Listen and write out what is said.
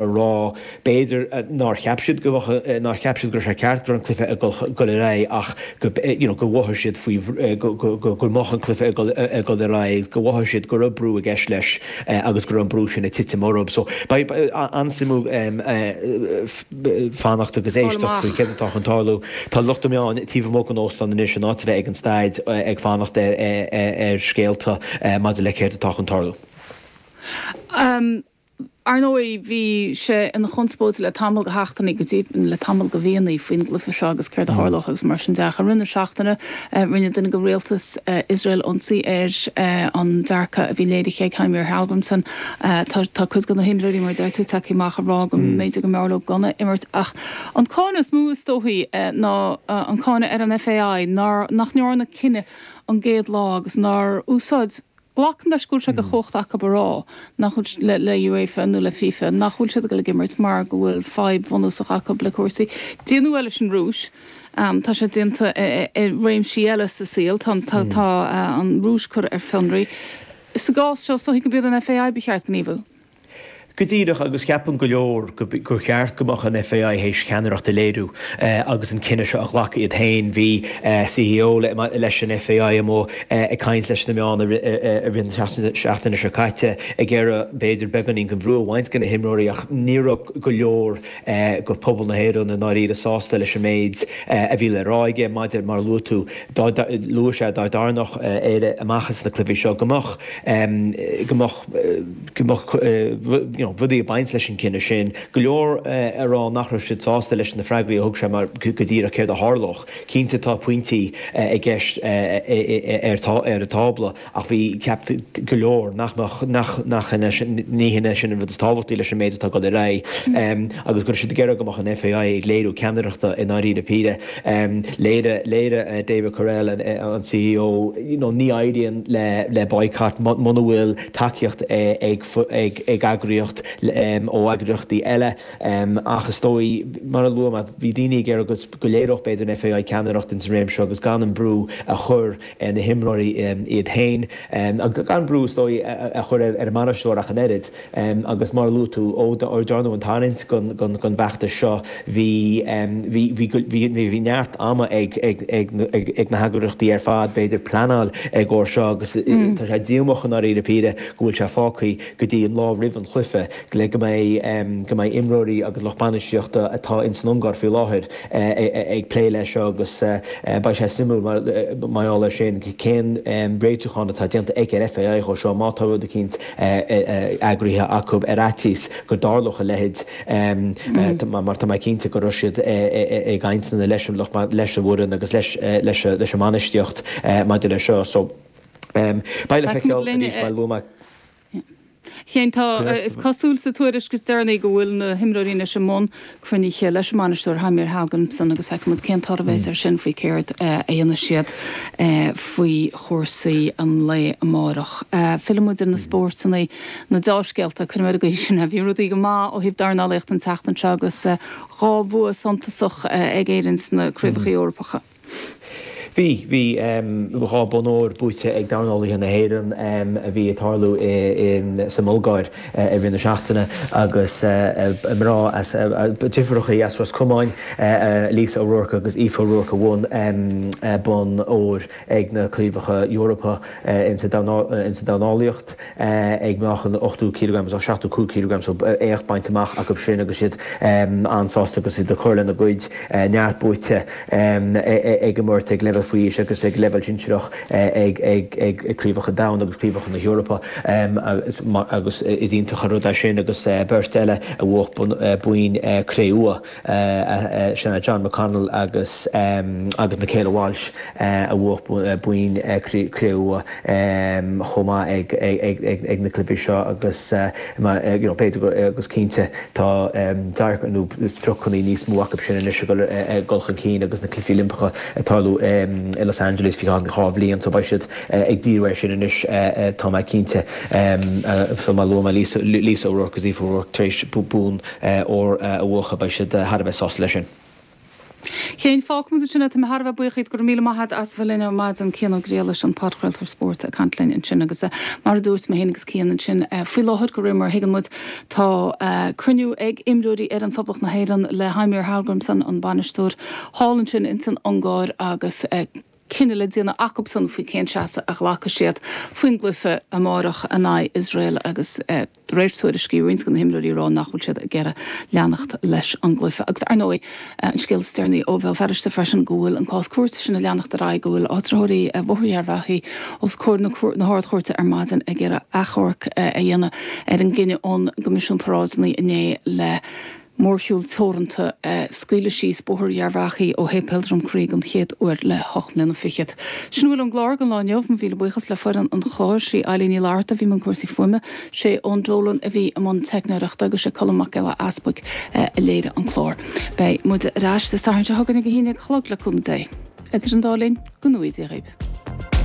a rá, b'fhéidir, nár cheap siad go mbeadh, nár cheap siad go raibh sé ceart go raibh an cluiche ag dul ar aghaidh ach go, you know, gur mhothaigh siad faoi, go mbeadh an cluiche ag dul ar aghaidh, gur mhothaigh siad go raibh brú i gceist leis agus go raibh an brú sin ag titim orthu. So, beidh sé an-suimiúil fanacht agus éisteacht faoi céard atá chun tarlú. Tá lucht na meán taobh amuigh den óstán anois in áit a bheith ag an staid ag fanacht ar scéalta maidir le céard atá chun tarlú. Ar ndóigh, bhí sé ina chonspóid le tamall, go háirithe, go dtí le tamall, go deireanach, faoin gcluiche seo agus céard a tharlódh agus mar sin de. Ach i rith na seachtaine, rinne duine de rialtas Iosrael ionsaí ar an dearcadh a bhí léirithe ag Heimir Hallgrímsson. Tá cuid de na himreoirí, mar a deir tú, tagtha amach ag rá go mb'fhéidir go mb'fhearr leo gan a imirt. Ach an cáineadh is mó, is dóichí, ná an cáineadh ar an FAI nár, nach ndearna cinneadh an gcéad lá agus nár úsáid, Glacaim leis go bhfuil sé de chumhacht acu a rá nach bhfuil, le UEFA nó le FIFA, nach bhfuil siad ag dul ag imirt mar go bhfuil fadhb bhunúsach acu le cúrsaí. Déanadh é leis an Rúis. Tá sé déanta i réimsí eile sa saol. Tá an Rúis curtha ar fionraí. Sa gcás seo, shílfeá gurb iad an FAI ba cheart gníomhú. Go díreach, agus ceapann go leor gur cheart go mbeadh an FAI ceannaireacht a léiriú agus an cinneadh seo a ghlacadh iad féin. Bhí CEO leis an FAI amuigh ag caint leis na meáin i rith na seachtaine seo caite ag iarraidh b'fhéidir beagáinín den bhrú a bhaint de na himreoirí ach ní raibh go leor de phobal na hÉireann i ndáiríre sásta leis an méid a bhí le rá aige maidir, mar a luaigh tú, luaigh sé dá dtarraingeodh Éire amach as na cluichí seo go mbeadh rudaí ag baint leis an gcinneadh sin, go leor ag rá nach raibh siad sásta leis na freagraí a thug sé mar, go díreach céard a tharlódh. Cinnte tá pointí i gceist ar an tábla ach bhí, cheap go leor nach mbeadh, nach shin é, ní shin é sin an rud is tábhachtaí leis an méid atá ag dul ar aghaidh agus go raibh siad ag iarraidh go mbeadh an FAI ag léiriú ceannaireachta i ndáiríre píre. Léirigh David Courell, an C.E.O. ní éiríonn le boycott muna bhfuil tacaíocht ag eagraíocht ó eagraíochtaí eile. Ach is dóigh, mar a luaigh mé, bhí daoine ag iarraidh go léireodh b'fhéidir an FAI ceannaireacht ins an réimse seo agus gan an brú a chur na himreoirí iad féin, gan brú is dóigh a chur ar an mbainisteoir ach an oiread. Agus mar a luaigh tú, ó rinneadh an tarraingt don bhfeachtas seo, bhí neart ama ag na heagraíochtaí ar fad, b'fhéidir, pleanáil i gcomhair seo agus tá sé díomách i ndáiríre píre go bhfuil sé fágtha go dtí an lá roimh an chluiche. le go mbeidh go mbeidh imreoirí agus lucht bainistíochta atá in san Ungáir faoi láthair ag plé leis seo agus beidh sé suimiúil maidir leis sin cén réiteachán atá déanta ag an FAI dhó seo má tá rud eicínt eagraithe acu ar fhaitíos go dtarlódh a leithéid mar tá mé cinnte go raibh siad i gcainteanna leis an lucht leis an bhfoireann agus leis leis leis an mbainistíocht maidir leis seo so beidh le feiceáil arís mar a luaigh mé. Chéin. Tá. Is cosúil sa tuairisc is deireanaí go bhfuil na himreoirí anois i mbun cruinnithe leis an mbainisteoir Heimir Hallgrimsson agus feicfidh muid cén toradh a bheas air sin faoi céard a dhéanfaidh siad faoi chúrsaí an lae amárach. Fillfidh muid ar na spóirt ann, na deá-scéalta, cuirfidh muid mar sin é. Bhí rudaí go maith ó thaobh dornálaíochta an tseachtain seo agus dhá bhua suntasach ag Éirinn sna craobhacha Eorpacha. Bhí. Bhí dhá bhonn óir buaite ag dornálaithe na hÉireann a bhí ag tarlú sa mBulgáir i rith na seachtaine agus mná deirfiúracha as Ros Comáin, Lisa O'Rourke agus Aoife O'Rourke a bhain bonn óir ag na Craobhacha Eorpacha sa dornálaíocht. ag meáchan ochtó cíleagram is seachtó cúig cíleagram so éacht bainte amach acu sin agus iad an-sásta agus iad ag cur lena gcuid neart buaite ag an mbeirt ag leibhéal faoi aois agus ag leibhéal sinsearach ag Craobhacha an Domhain agus Craobhacha na hEorpa agus is iontach an rud é sin agus beirt eile a bhuaigh boinn cré-umha. Sea Jon McConnell agus Michaela Walsh a bhuaigh boinn cré-umha chomh maith ag na cluichí seo agus b'fhéidir is cinnte tá dearcadh nó spriocannaí níos mó acu sin anois ag dul chun cinn agus na cluichí Oilimpeacha ag tarlú i Los Angeles faoi cheann dhá bhliain so beidh siad ag díriú air sin anois tá mé cinnte. Mar a luaigh mé Lisa O'Rourke agus Aoife O'Rourke tar éis bonn óir a bhuachan, beidh siad thar a bheith sásta leis sin. A Chéin, fágfaidh muid ansin é. Tá mé thar a bheith buíoch díot. Go raibh míle maith agat as a bheith linn ar maidin. Cian Ó Griallais, an podchraoltóir spóirt, ag caint linn ansin agus, mar a dúirt mé féin agus Cian ansin faoi láthair, de réir mar a thuigeann muid, tá cruinniú ag imreoirí fhoireann Phoblacht na hÉireann le Heimir Hallgrimsson, an bainisteoir, thall ansin insan Ungáir agus, cinneadh le déanamh acubsan faoi cén seasamh a ghlacfaidh siad faoin gcluiche amárach in aghaidh Iosrael agus, de réir tuairiscí roinnt de na himreoirí ag rá nach bhfuil siad ag iarraidh leanacht leis an gcluiche. Agus, ar ndóigh, an scéal is deireanaí ó Bhéal Feirste freisin go bhfuil an cás cúirte sin ag leanacht ar aghaidh, go bhfuil áitritheoirí Bhóthar Gharbhachaidh os comhair na hArd-Chúirte ar maidin ag iarraidh achomharc a dhéanamh ar an gcinneadh ón gCoimisiún Paráideanna inné le Mórshiúl teoranta a scaoileadh síos Bóthar Gharbhachaidh ó Shéipéal Drumcree den chéad uair le hocht mbliana fichead. Sin a bhfuil ón gclár don lá inniu. Mo mhíle buíochas le foireann an chláir, sí Ailín Ní Fhlatharta a bhí i mbun cúrsaí fuaime, sé Eoin Dolan a bhí i mbun teicneoireachta agus sé Colm Mac Giolla Easbuig a léirigh an clár. Beidh muide ar ais Dé Sathairn seo chugainn ag a haon dhéag a chlog le cúnamh Dé. Idir an dá linn, go ngnóthaí Dia dhaoibh.